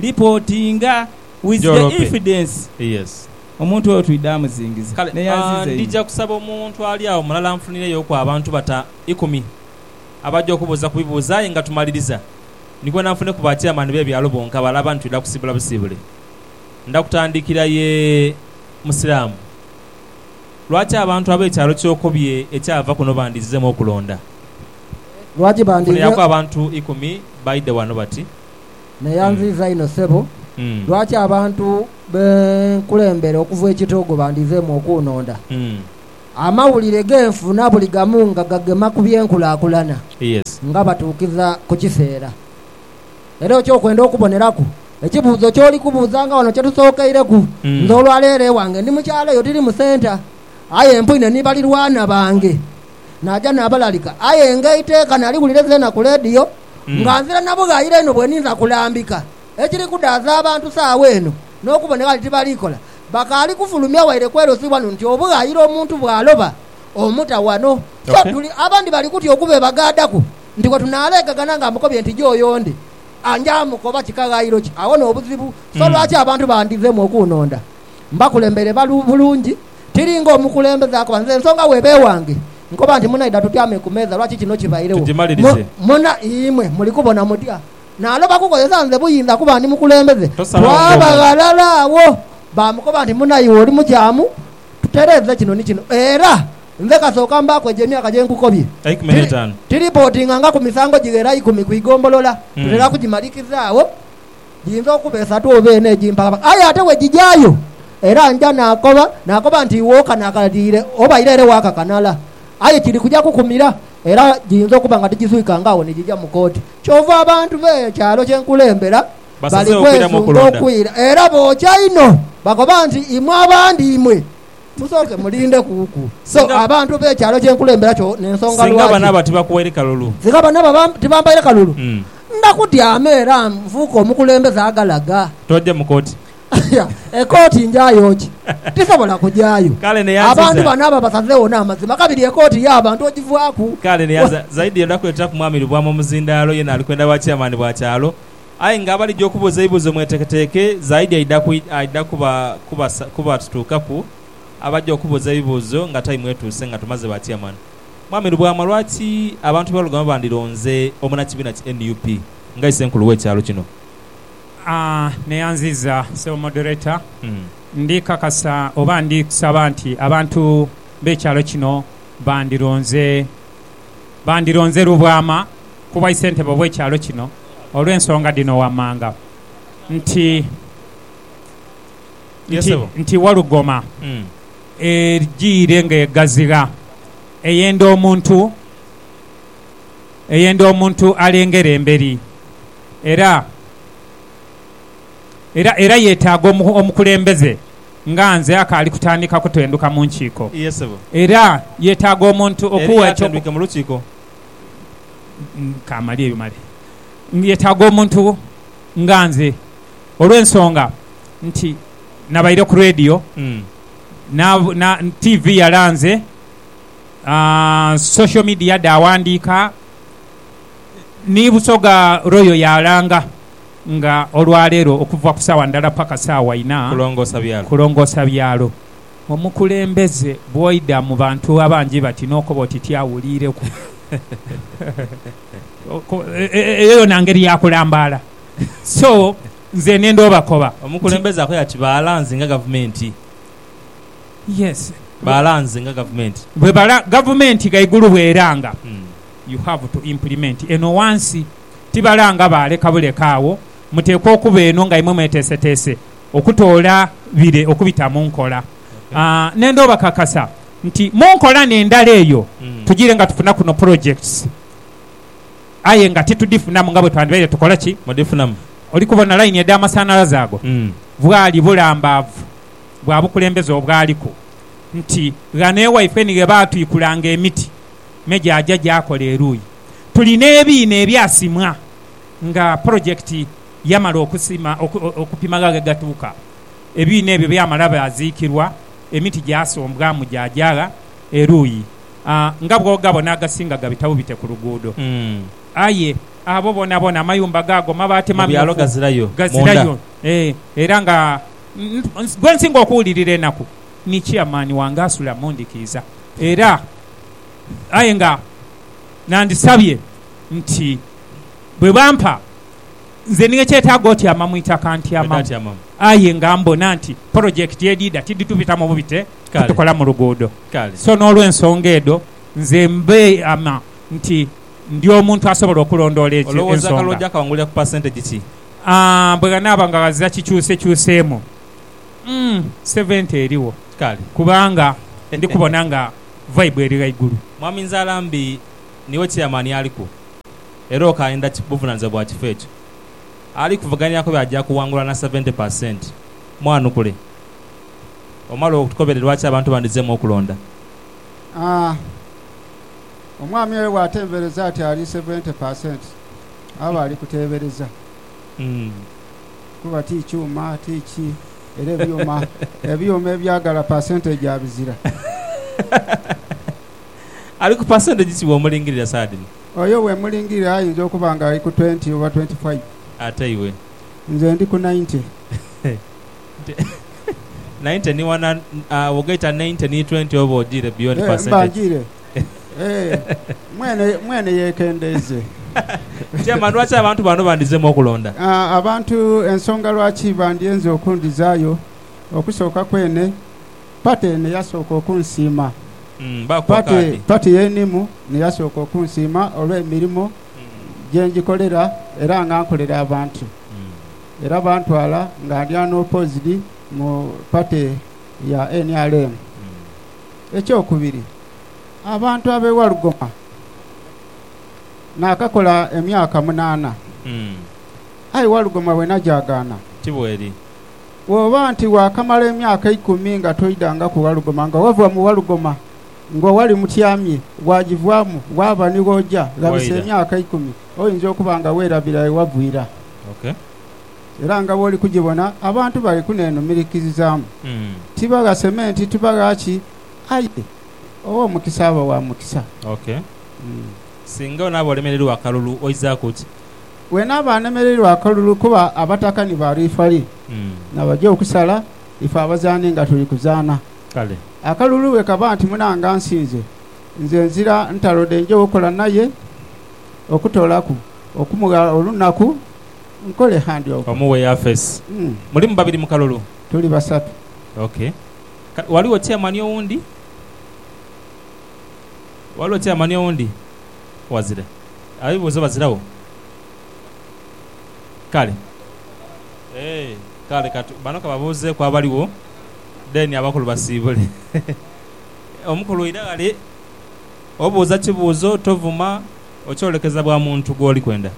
Ripotinga with the Jorope. evidence. Yes. Omuntu oyo twidha amuzingiza. Kale Naye ah, anziiza inho. ndija kusaba omuntu ali agho mulala anfunireiyoku abantu bata ikumi abaja okubuuza ku bibuuzo aye nga tumaliriza nigwena nfuneku ba chairman be byalo bonka bale abandi twidha kusiibula busiibule. Ndha kutandikira ye Musiraamu. Lwaki abantu abe kyalo ky'okobye ekyava kuno bandizizemu okulonda? Lwaki bandi. Nfuniraku abantu ikumi baidhe wano bati. Neyanziiza inho sebo. Lwaki abantu be nkulembera okuva e Kitogo bandhizeemu okunhonda? Amawulire ge nfuna buli gamu nga gagema ku by'enkulakulana nga batuukiza ku kiseera. Era eky'okwenda okuboneraku, ekibuuzo ky'oli kubuuza nga wano kye tusookeireku, nze olwa leero ewange ndi mu kyalo eyo tiri mu senta. Aye empwine ni balirwana bange naja nabalalika aye ng'eiteeka naliwulira ezeena ku leediyo. nga nzira na bughayire inho bwe ninza kulambika ekiri kudaaza abantu saagho eno n'okuboneka nti tibali kola. Bakaali kufulumya waire kwerozibwa nu nti obughayire omuntu bw'aloba omuta wano. So tuli abandi bali kutya okubeebagaadaku nti bwe tunaaleegagana nga amukobye nti joyo ndi, anja amukoba kika ghayiro ki? Agho n'obuzibu. So lwaki abantu bandhizemu okuunonda mbakulembere bulungi? Tiri ng'omukulembeze akoba, nze nsonga w'eba ewange, nkoba nti, Munaidha tutyame ku meeza, lwaki kino kibairegho? Mwena imwe muli kubona mutya? Naaloba kukozesa nze buyinza kuba ndi mukulembeze. Twaba ghalala agho, baamukoba nti, Munaiwa oli mukyamu, tutereeze kino ni kino. Era nze kasooka mbaaku egyo emyaka gye nkukobye. Tiripotinga nga ku misango gighera ikumi ku igombolola, tutera kugimalikiza agho. Giyinza okuba esatu oba ena egimpalaba, aye ate bwe gigyayo era nja naakoba, naakoba nti iwe okanakaliire oba ira ere waakakanala. Aye kiri kuja kukumira, era giyinza okuba nga tigizwikanga agho ni gija mu kooti. Kyova abantu be kyalo kye nkulembera bali kwesunga okwira era bookya inho, bakoba nti, Imwe abandi imwe Musooke mulinde kuuku. So abantu b'ekyalo kye nkulembera kyo n'ensonga lwaki. Singa banaba tibakuwaire kalulu. Singa banaba tibampaire kalulu. Ndakutyama era nfuuke omukulembeze agalaga. Toja mu kooti. Aya, ekooti njayo ki? Tisobola kujayo. Kale ne yanziza. Abantu banaba basazegho n'amazima, kabiri ekooti y'abantu ogivaaku. Kale ne yanziza. Zaidi, odakuleteraku mwami Lubwama omuzindaalo, yena alikwenda bwa chairman bwa kyalo, Aye nga abalija okubuuza ebibuuzo mweteeketeeke zaidi aidha aidha kuba kuba kubatutuukaku abaja okubuuza ebibuuzo nga taimu etuuse nga tumaze ba Chairman. Mwami Lubwama lwaki abantu be Lugoma bandironze omunakibiina ki nup nga isenkulu we kyalo kino? Neyanziza Ssebo Moderator. Ndi kakasa oba ndi kusaba nti abantu be kyalo kino bandironze. bandironze Lubwama ku bwaisentebe obw'ekyalo kino olw'ensonga dhino wammanga nti Ye nti ssebo. nti Walugoma Mm. ejiire ng'egazigha eyenda omuntu eyenda omuntu alengera emberi era era era yetaaga omukulembeze nga nze akaali kutandika kutendhuka mu nkiiko. Iye sebo. Era yetaaga omuntu okuwa ekyo. Eriyo atendwike mu lukiiko? Kamalye ebyo male. Yetaaga omuntu nga nze olw'ensonga nti nabaire ku radio, TV yalanze, social media dhaawandiika, ni Busoga Royal yaalanga. Nga olwa leero okuva ku saawa ndala paka saawa ina. Kulongoosa byalo. Kulongoosa byalo. Omukulembeze bwoidha mu bantu abangi bati n'okoba oti tiawuliireku. Eyo yoona ngeri ya kulambaala. So, nze nenda obakoba nti. Omukulembeze akoya ati baalanze nga Gavumenti. Yes. Baalanze nga Gavumenti. Bwe bala Gavumenti ghaigulu bw'eranga, you have to implement eno ghansi. tibalanga baaleka buleka agho, muteekwa okuba eno nga imwe mweteeseteese okutoola bire okubita mu nkola. N'enda obakakasa nti mu nkola n'endala eyo tugiire nga tufuna kuno projects aye nga titudhifunamu nga bwe twandibaire tukola ki? Mudhifunamu. Oli kubona layini edh'amasanhalaze ago bwali bulambaavu bwa bukulembeze obwaliku nti ghano ewaifeni ghe baatwikulanga emiti me gyaja gyakola eruuyi. tuli n'ebiina ebyasimwa nga pulojekiti yamala okusima okupima gha ghegatuuka. Ebiina ebyo byamala byaziikirwa, emiti gyasombwamu gyaja gha eruuyi nga bw'oghabona agasinga gabita bubite ku luguudo. Aye abo boonaboona amayumba gaago mabaati mamyufu ghazirayo era nga gwe nsinga okuwulirira enaku ni chairman wange asula mu ndhikiiza era. aye nga nandisabye nti bwe bampa nze ni ekyetaago otyama mu itaka ntyamamu aye nga mbona nti polojekiti edhidha tidhitubitamu bubite titukola mu luguudo so n'olwensonga edho nze mbeeyama nti ndi omuntu asobola okulondoola egyo ensonga. Bwe ghanaaba nga ghazira kikyusekyuseemu, umm seventi erigho kubanga ndi kubona nga. Vaibu eri ghaigulu. Mwami Nzalambi niiwe Chairman aliku era okaayenda buvunanizibwa bwa kifo ekyo. Ali kuvuganiaku byo aja kuwangula na seventy per cent. Mwanukule omale otukobere lwaki abantu bandizemu okulonda. Aah! Omwami oyo bw'atembereza ati ali seventy per cent aba ali kuteebereza. kuba ti kyuma ti ki era ebyuma ebyuma ebyagala percentage abizira. Ali ku percentage ki bw'omulingirira saha dhino? Oyo bwemulingirira ayinza okuba nga ali ku twenty oba twenty five. Ate iwe? Nze ndi ku ninety. Ninety ni one hundred, agho bwogaita ninety ni twenty oba ojiire beyond percentage. Eeh mba njiire. Mwene yeekendeeze. Chairman, lwaki abantu bano bandizemu okulonda? Abantu ensonga lwaki bandyenze okundizaayo, okusooka kwene pate eno yasooka okunsiima. Pate pate y'enimu n'eyasooka okunsiima olw'emirimo gye ngikolera era nga nkolera abantu. Era bantwala nga ndi unopposed mu pate ya nrm. Ekyokubiri, abantu ab'e Walugoma naakakola emyaka munaana. Aye Walugoma wena gyagaana. Ti bweri? Bw'oba nti waakamala emyaka ikumi nga toidangaku Walugoma, nga wava mu Walugoma ng'o wali mutyamye, waagivaamu waaba ni w'oja, ghabisa emyaka ikumi, oinza okuba nga weerabira ye wavira. Era nga bw'oli kugibona, abantu bali kuneenumirikirizaamu. Tibaghase me nti tibagha ki, aye ow'omukisa aba wa mukisa. Ok. Singa onaaba olemereirwa akalulu, oizaaku ki? Bwenaaba anemereirwa akalulu kuba abataka ni ba lwifa li, nabaja okusala, ife abazaani nga tuli kuzaana. Kale. Akalulu bwe kaba nti munange ansinze, nze nzira ntalo dhenje okola naye, okutoolaku, okumugha olunaku. Nkole handi ogwo. Omu we Yafesi. Mulimu babiri mu kalulu? Tuli basatu. Ok. Kale ghaligho chairman owundi? Ghaligho chairman owundi? Wazira. Abebibuuzo baziragho? Kale. Eeh. Kale ka tu, bano ka babuuzeeku abaligho, then abakulu basiibule. Omukulu ira ghale, obuuza kibuuzo, tovuma, okyolekeza bwa muntu gwoli kwenda.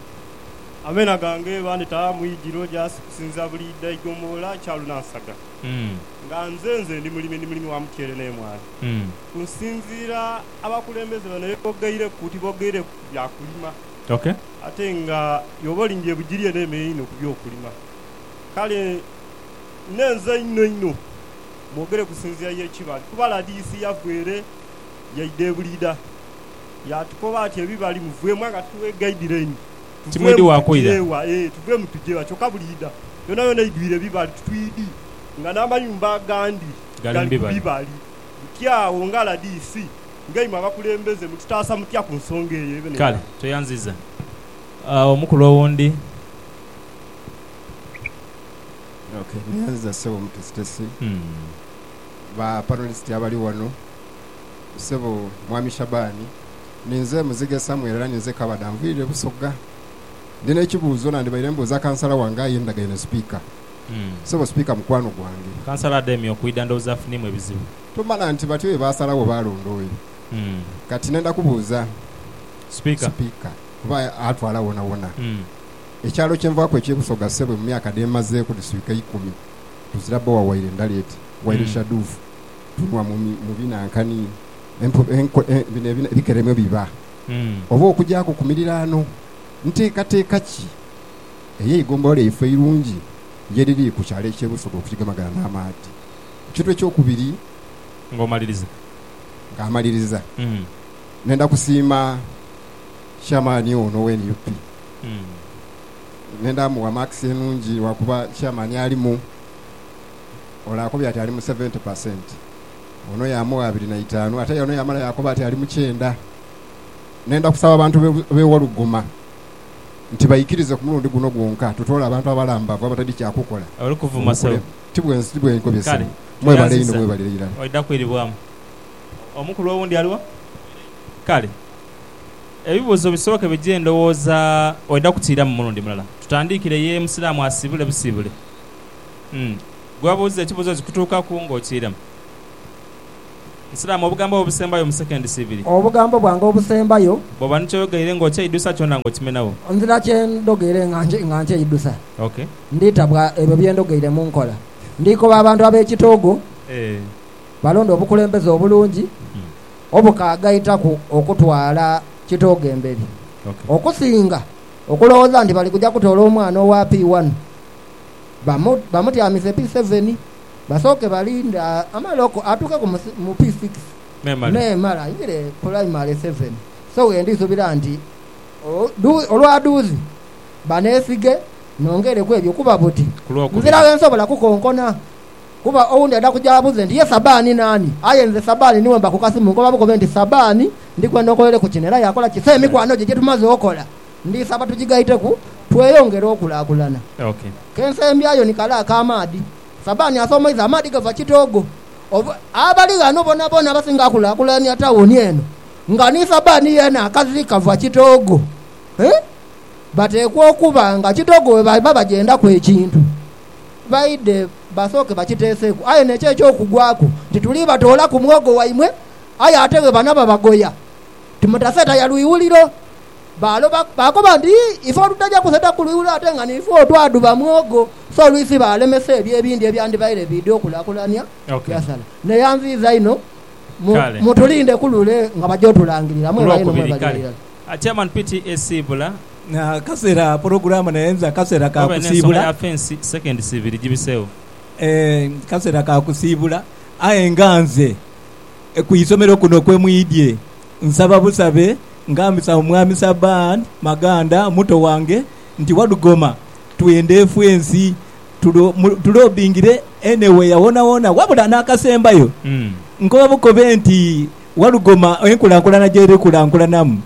Ameena gange bandheta mu igiro gyasi kusinza buli idha igombolola kyalu na nsaga, nga nze nze ndi mulimi, ndi mulimi wa mutyere n'emwaani. Ku nsinziira abakulembeze bano ye bogeireku, tibogeireku ku bya kulima ate nga yoba olimbye bugiri eneema einho ku by'okulima. Kale nnenze inho inho mwogere kusinziira y'ekibali kuba rdc yava ere yaidha e Buliidha. Yaatukoba ati, Ebibali muveemu nga tuli w'eiga Idireni. Tuveemu tuje wa? Ee, tuveemu tuje wa? Kyokka buli idha yonayona eidhwire ebibali twidhi, nga n'amayumba agandi gali ku bibali. Buti agho, nga RDC, nga imwe abakulembeze, mututaasa mutya ku nsonga eyo? Kale, tweyanziza omukulu owundi. Ok. Neyanziza Ssebo Omutesitesi, ba panelist abali wano. Ssebo Mwami Shabaani, ninze muzighe Samuel era ninze Kabada. Nviire Busoga. Ndi n'ekibuuzo, nandhibaire mbuuza kansala wange aye ndagaine Sipiika. Ssebo Sipiika mukwano gwange. Kansala ademye okwidha ndowooza afuniemu ebizibu. Tomala nti batyo bye baasalawo baalonda oyo. Kati nenda kubuuza Sipiika kuba atwala wonawona. Ekyalo kye nvaaku eky'e Busoga ssebo mu myaka dhe mmazeeku dhiswika ikumi tuzira bbowa waire ndaleeti, waire shaduufu, Tunwa mu binankani bino ebikere mwe biba, oba okugyaku ku miriraano. Nteekateeka ki ey'eigombolola yaife eirungi ye dhiri ku kyalo eky'e Busoga okukigemagana n'amaadhi? Ekintu eky'okubiri. Ng'omaliriza. Nga amaliriza, nenda kusiima Chairman ono owe nup. Nenda mugha maakisi enungi lwakuba Chairman alimu. ole akobye ati ali mu seventi pa senti, ono yaamugha abiri na itaanu, ate aye ono yaamala yaakoba ati ali mu kyenda. Nenda kusaba abantu b'e Waluguma nti baikirize ku mulundi guno gwonka tutoole abantu abalambavu abatali kya kukola obukulembeze. Ti bwe nkobye ssebo. Mwebale inho, mwebale irala. Omukulu owundi ali wa? Kale, ebibuuzo bisooke bije ndowooza oidha kutiiramu mulundi mulala. Tutandiikire ye Musiraamu asiibule busiibule. Gwe obuuza ekibuuzo kikutuukaku ng'okiira mu Islam, obugambo bwo obusembayo mu seconds ibiri. Obugambo bwange obusembayo. Bw'oba ni ky'oyogeire ng'okyeidhusa kyona ng'okimenagho. Nzira kye ndhogeire nga nkyeidhusa. Ok. Nditabwa ebyo bye ndhogeire mu nkola. Ndikoba abantu ab'ekitoogo balonde obukulembeze obulungi obukaagaitaku okutwala kitoogo emberi okusinga okulowooza nti bali kuja kutoola omwana owa P-one. bamutyamize pi seveni, basooke balinde amaloko atuuke ku mu pi sikisi memale aingire pulaimale seveni. So wendi subira nti olwa duuzi banesige nongere ku ebyo kuba buti nzira wensobola kukonkona kuba owundi aidha kuja abuze nti ye Sabani nani aye nze Sabani niwe mba ku kasimu nkoba bukobe nti Sabani ndikwenda onkolereku kino era yakola ki so emikwano gye gyetumaze okola Ndisaba tujigaiteku tweyongere okulakulana. Kensembyayo ni kale ak'amaadhi. Sabani asoomoiza amaadhi gava Kitoogo. Abali ghano bonabona abasinga akulakulania tawuni eno nga ni Sabani yeene akazi kava Kitoogo. Bateekwa okuba nga Kitoogo we baiba bagyendaku ekintu baidhe basooke bakiteeseku. Aye n'ekyo eky'okugwaku nti tuli batoolaku mwogo waimwe aye ate bwe banaba bagoya timutaseeta ya lwiwuliro. Baaloba, baakoba nti, Ife olutaja kuseta ku lwiwo ate nga nifwo twadhuba mwogo, so olwisi baalemesa ebyo ebindi ebyandibaire biidha okulakulania Yasala. Naye anziiza inho, mu, mutulinde ku lule nga baja otulangirira. Mwebale inho, mwebale irala. Chairman Piti esiibula. Akaseera pulogulaamu naye nze akaseera ka kusiibula. Akaseera ka kusiibula aye nga nze ku isomero kuno kwe mwidhye Nsaba busabe nga mbisa mu Mwami Saban Maganda, muto wange, nti Wadugoma twende ffe ensi tulobingire anywhere wonawona wabula n'akasembayo nkoba bukobe nti Wadugoma enkulankulana gy'eri kulankulanamu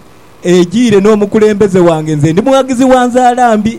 ejiire n'omukulembeze wange nze ndi mughagizi wa nzaala mbi.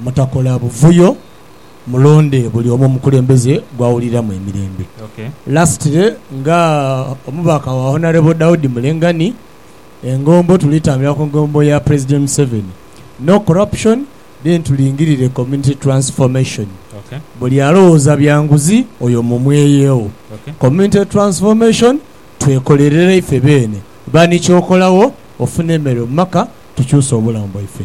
Mutakola buvuyo, mulonde buli omu omukulembeze gw'awuliramu emirembe. Lastly, nga omubaka wa Honourable Daudi Mulenga ni engombo tuli tambulira ku ngombo ya President Museveni, No Corruption then tulingirire Community Transformation. Buli alowooza bya nguzi oyo mumweyegho. Community Transformation twekolerere ife beene. Ba ni ky'okolagho ofune emere mu maka tukyuse obulamu bwaife.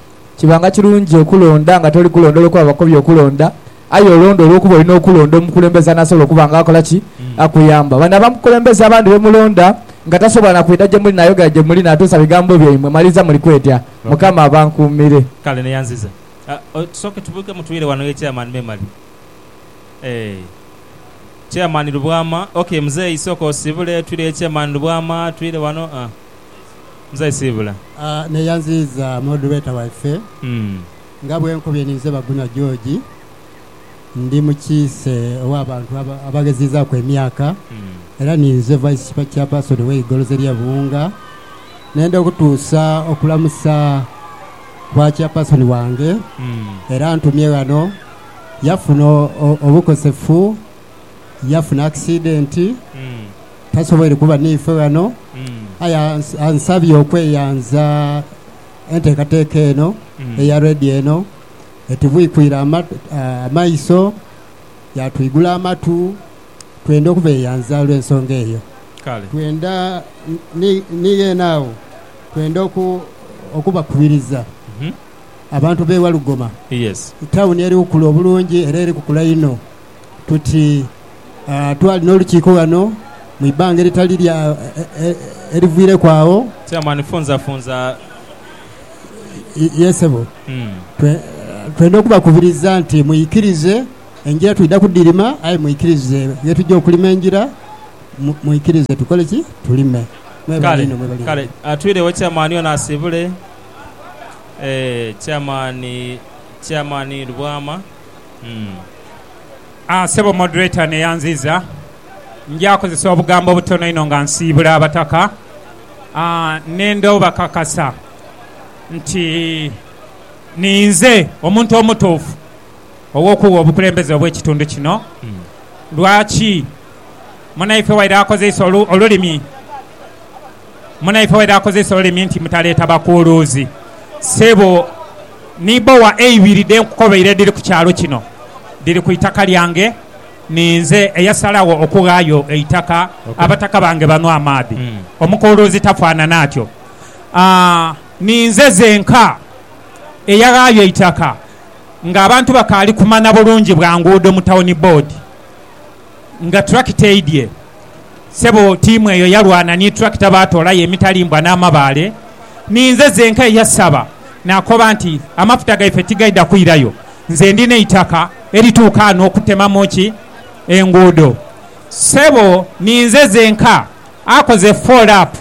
Kibanga kirungi okulonda nga toli kulonda olw'okuba bakobye okulonda, aye olonda olw'okuba olina okulonda omukulembeze anasobola okuba nga akola ki? Akuyamba. Bano abakulembeze abandi be mulonda nga tasobola na kwidha gye muli naayogera gye muli naatuusa bigambo byaimwe, maliiriza muli kwetya. Mukama abankuumire. Kale neyanziza. Tusooke tubuuke mutwire wano ye chairman memale eeh Chairman Lubwama, ok muzeeyi sooka osibule twire ye chairman Lubwama twire wano aah. Musayi Siibula. Neeyanziiza Moderator waife. Nga bwe nkobye ninze Baguna George. Ndi mukiise ow'abantu abaghezizaaku emyaka era ninze Vice Chairperson w'eigoloza erye Buwunga. Nenda okutuusa okulamusa kwa Chairperson wange era antumye ghano. Yafuna obukosefu, yafuna accident. tasoboire kuba n'ife ghano, aye ansabye okweyanza enteekateeka eno eya rredio eno. Etubwikwire amaiso, yaatwigula amatu. Twenda okubeeyanza olw'ensonga eyo. Twenda ni ghene agho, twenda okubakubiriza abantu b'e Walugoma, tauni eri kukula obulungi era eri kukula inho. tuti twali n'olukiiko ghano mu ibanga eritali lya eriviireku agho. Chairman, Funza funza. Ye sebo, twenda okubakubiriza nti mwikirize engira twidha kudhirima aye mwikirize ye tuja okulima engira, mwikirize tukole ki? Tulime. Mwebale inho, mwebale inho. Kale, kale twiregho Chairman ono asiibule. Eeh, Chairman, Chairman Lubwama. Sebo moderator neyanziiza, nja kozesa obugambo obutono inho nga nsiibula Abataka nenda obakakasa nti ninze omuntu omutuufu ow'okugha obukulembeze obw'ekitundu kino. Lwaki? Munaife waire akozeisa olulimi. Munaife waire akozese olulimi nti mutaleeta bakuuluuzi. Ssebo, ni bbowa eibiri dhe nkukobeire edhiri ku kyalo kino, dhiri ku itaka lyange. Ninze eyasalagho okughaayo eitaka abataka bange banwe amaadhi. Omukuuluuzi tafaanana atyo. Ninze zenka eyaghaayo eitaka ng'abantu bakaali kumana bulungi bwa nguudo mu Tawuni Bboodi nga tulakita eidhye. Sebo tiimu eyo yalwana ni tulakita baatoolayo emitalimbwa n'amabaale. Ninze zenka eyasaba naakoba nti, Amafuta gaife tigaidha kwirayo, nze ndi n'eitaka erituuka ghano okutemamu ki? Enguudo. Sebo ninze zenka akoze fool up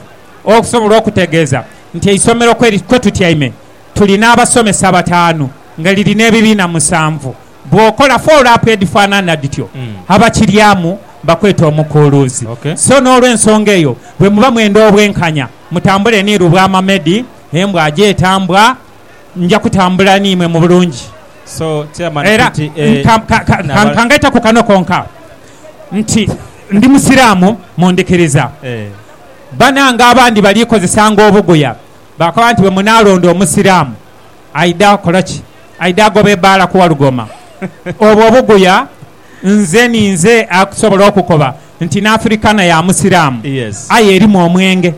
okusobola okutegeeza nti eisomero kwe tutyaime tuli n'abasomesa bataanu nga liri n'ebibiina musanvu. Bw'okola foolapu edhifaanana dhityo, abakiryamu bakweta omukuuluuzi. So n'olw'ensonga eyo, bwe muba mwenda obwenkanya, mutambule ni Lubwamamedi, embwa aje etambwa, nja kutambula n'imwe mu bulungi. Era ka ngaite ku kano konka nti ndi Musiraamu mu ndhikiriza. Banange abandi baliikozesanga obuguya, bakoba nti bwe munaalonda Omusiraamu, Aidha kola ki? Aidha agoba ebaala ku Walugoma. Obwo obuguya nze ninze akusobola okukoba nti n'Afirikana ya Musiraamu aye erimu omwenge.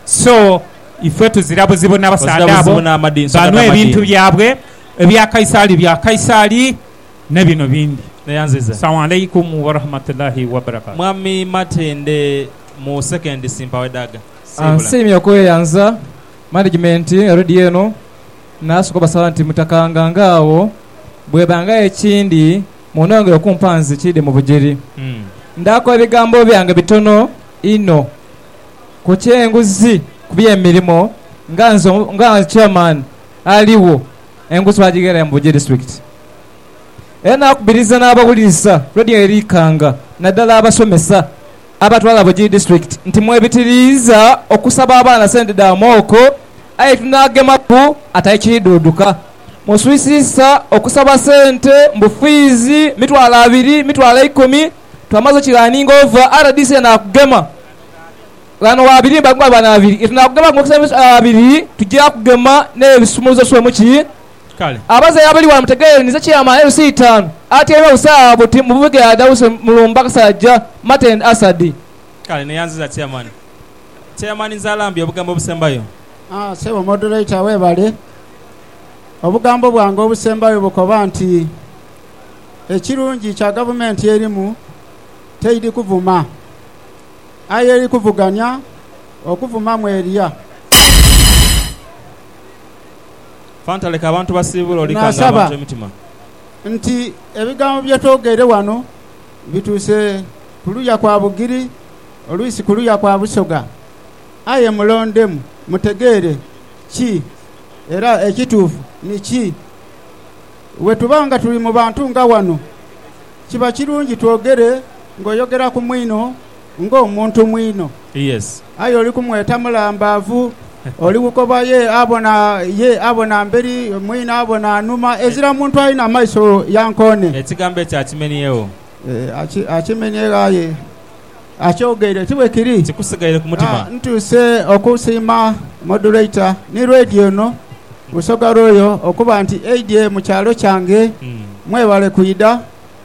So ife tuzira buzibu n'abasaadha abo banhwe ebintu byabwe. Ebya Kaisaali bya Kaisaali ne bino bindi. Salamu Alaikum Warahmatullahi Wabarakatuh. Mwami Matende mu sekendi si mpawo edaaga. Siibula. Nsiimye okweyanza. Management erudi eno nasoka obasaba nti mutakanga nga agho bwebangagho ekindi munongere okumpa nze kide mu bujeri ndaku ebigambo byange bitono inho ku kyenguzi ku bye mirimo nga nze nga chairman aligho enguzi twajigherayo mu Bujiri district era nakubiriza nabawulirisa radio eri Ikanga nadala abasomesa Abatwala Bugiri District nti mwebitiriiza okusaba abaana sente dha mooko aye tinagemaku ate ekiidhuuduka muswisiisa okusaba sente mbu fiizi mitwalo abiri, mitwalo eikumi twamaze okiraninga ova rdc enakugema ghano wabirimba nga banaabiri etunakugema nga okusaba emitwalo abiri tugya kugema n'ebisumuluzo swemuki Kale. Abaze abali ghano mutegeeranize ekyama LC itaanu atyaime busaawa buti mu bubighe adhawuse mu lumba Kasajja Martin Asadi. Kale, neyanziza Chairman. Chairman Nzarambye, obugambo obusembayo. Haa, ssebo Moderator weebale. Obugambo bwange obusembayo bukoba nti, Ekirungi kya Gavumenti erimu teidhi kuvuma, aye eri kuvuganya, okuvuma mweria. Fanta leka abantu basiibule oli kanga abantu emitima. Naasaba nti ebigambo bye twogeire wano bituuse ku luya kwa Bugiri oluisi ku luya kwa Busoga. Aye mulondemu mutegeere ki era ekituufu ni ki. Bwe tuba nga tuli mu bantu nga wano, kiba kirungi twogere ng'oyogera ku mwino. ng'omuntu mwino. Aye oli kumweta mulambaavu, oli bukoba, ye abona, ye abona mberi, mwino abona nhuma, ezira muntu alina maiso ya nkoone. Ekigambo ekyo akimeniegho. Ee, akimeniegho, aye akyogeire. Ti bwe kiri? Kikusigaire ku mutima. A Ntuuse okusiima Modulator ni Lwedi ono Busoga Royal okuba nti aidye mu kyalo kyange. Mwebale kwidha.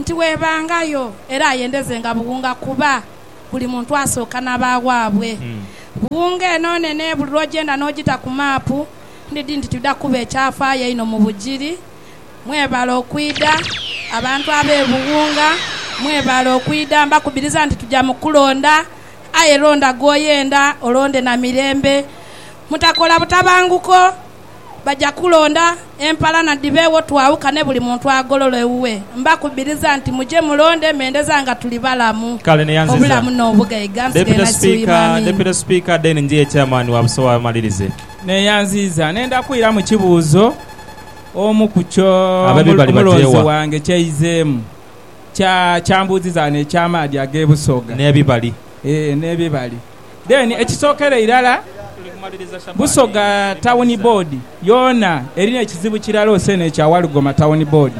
nti webangayo era ayendezenga buwunga kuba buli muntu asooka nabawaabwe. Buwunga eno nene buli lwogyenda nogita ku maapu ndidhi nti twidha kuba ekyafaayo einho mu bugiri. Mwebale okwidha abantu abe Buwunga mwebale okwidha mbakubiriza nti tuja mu kulonda aye londa gwoyenda olonde na mirembe mutakola butabanguko. baja kulonda empalana dhibeegho twaawukane buli muntu agolole ewuwe. Mbakubiriza nti muje mulonde mendeza nga tuli balamu, Kale ni yanziza. obulamu n'obugaiga. Nsighe Deputy Nasisi Speaker, Wiimami. Deputy Speaker, Deen Njie Chairman wa Busowa amalirize. Neyanziza nenda kwiramu kibuuzo omu ku kyo Ababi bali omulonzi bagyewa? wange kyaizeemu kya kyambuuzizagho n'eky'amaadhi ag'e Busoga N'ebibali. ee n'ebibali. Then ekisokera irala Busoga Town Board yoona erina ekizibu kirala ose nekya Walugoma Town Board.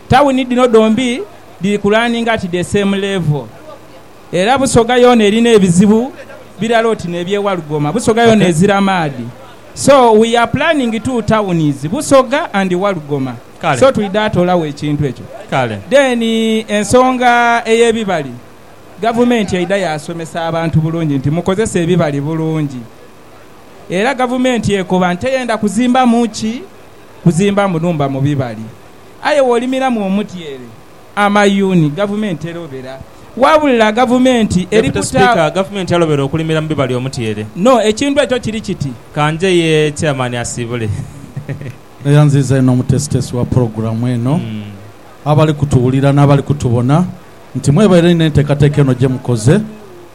Town dhino dhombi dhiri ku running at the same level era Busoga yoona erina ebizibu birala oti nebye Walugoma. Busoga yoona ezira maadhi so we are planning two towns Busoga and Walugoma so twidha toolawo ekintu ekyo. Then ensonga eyebibali. Gavumenti eidha yaasomesa abantu bulungi nti mukozese ebibali bulungi. Era gavumenti ekoba nti teyenda kuzimbamu ki? Kuzimbamu nhumba mu bibali. Aye wolimiramu omutyeere, amayuuni, gavumenti terobera. Wabula gavumenti eri Deputy kuta. Speaker, Gavumenti yalobera okulimira mu bibali omutyeere. No, ekintu ekyo kiri kiti. Ka nje ye Chairman asiibule. Eyanziza inho omutesitesi wa pulogulamu eno, abali kutuwulira n'abali kutubona. nti mwebaire inho enteekateeka eno gye mukoze,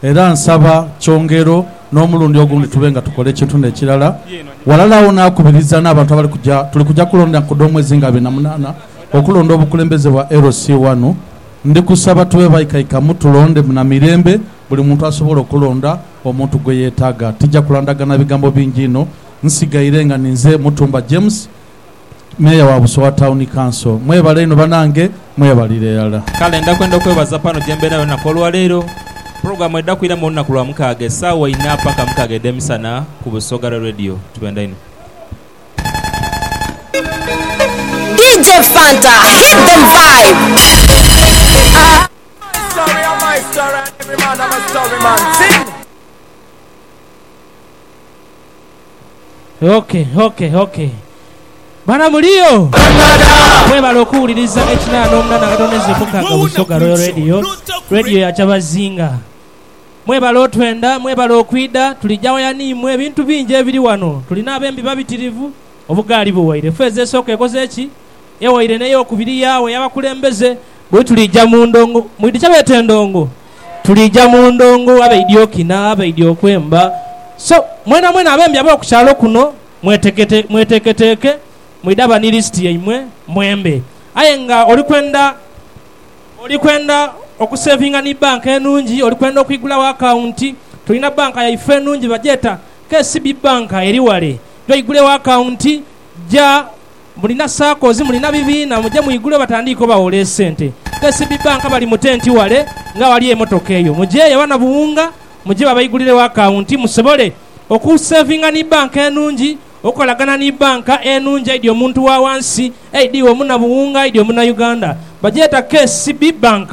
era nsaba kyongero n'omulundi ogundi tube nga tukola ekintu n'ekirala. Ghalala agho naakubiriza n'abantu abali kuja, tuli kuja kulonda ku dh'omwezi nga abiri na munaana okulonda obukulembeze bwa LC ghano. Ndi kusaba tube baikaikamu tulonde na mirembe buli muntu asobole okulonda omuntu gwe yeetaaga. Tija kulandagana bigambo bingi inho. Nsigaire nga ninze Mutumba James. Meeya wa Busowa Town Council. Mwebale inho banange, mwebalire irala. Kale nda kwenda kwebaza pano gyembeera yona ku olwaleero. Pulogulamu edha kwiramu olunaku lwa mukaaga esaawa inha paka mukaaga edhemisana ku Busoga Ra Radio. Tubenda inho. DJ Fanta hit them vibe. Oke, oke, oke. Bana muliyo? Mwebale okuwuliriza ekina n'omuna na Katonda Ezio Mukaga Busoga Royal Radio, Radio ya Kyabazinga. Mwebale otwenda, mwebale okwidha. Tuli jawaya n'imwe. Ebintu bingi ebiri wano. Tuli n'abembi babitirivu. Obugaali buwaire. Feeza esooka ekoze ki? Ewaire n'eyokubiri yaagho ey'abakulembeze. Bwe tuliija mu ndongo, mwidhi kye beeta endongo? Tuliija mu ndongo abaidhi okina, abaidhi okwemba. So, mwenamwena abembi ab'oku kyalo kuno, mwetekete, mweteeketeeke, mwidhaba ni lisiti yaimwe, mwembe. Aye nga oli kwenda, oli kwenda okuseevinga ni bbanka enungi, oli kwenda okwigulagho akawunti, tulina bbanka yaife enungi bagyeta KCB Bbanka eri wale. Gya oigulegho akawunti, gya. Mulina sakozi, mulina bibiina, muje mwigulewo batandiike obawola esente. KCB Bank bali mu tenti wale ng'awali emotoka eyo. Mujeeyo abanabuwunga muje babaigulirewo akawunti musobole okusevinga ni banka enungi, okukolagana ni banka enungi aidhi omuntu wa wansi, aidhi iwe omunabuwunga, aidhi omunauganda. Bagyeta KCB Bank.